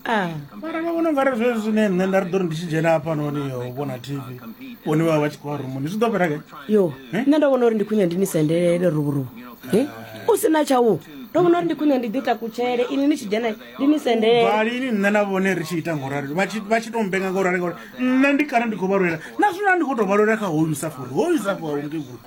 ah. mara vha vhona ungari zwezwi zwine nṋe nda ri ḓo ri ndi tshi dzhena hafhanoni yo vhona tv vhone vha vha vha tshi khou vha rumuni zwi ḓo fhela ke yo eh? nṋe ndo vhona uri ndi khwiṋe ndi ni sendelele ruvuruvu eh? u si na tshau ndo vhona uri ndi khwiṋe ndi ḓi takutshele ini ni tshi dzhena ndi ni sendelelini nṋe na vhone ri tshi ita ngorali vha tshi to mbenga ngorali ngori nṋe ndi kana ndi khou vha lwela na zwino ndi khou to vha lwela kha hoyu musafori hoyu musafori aunge vhulu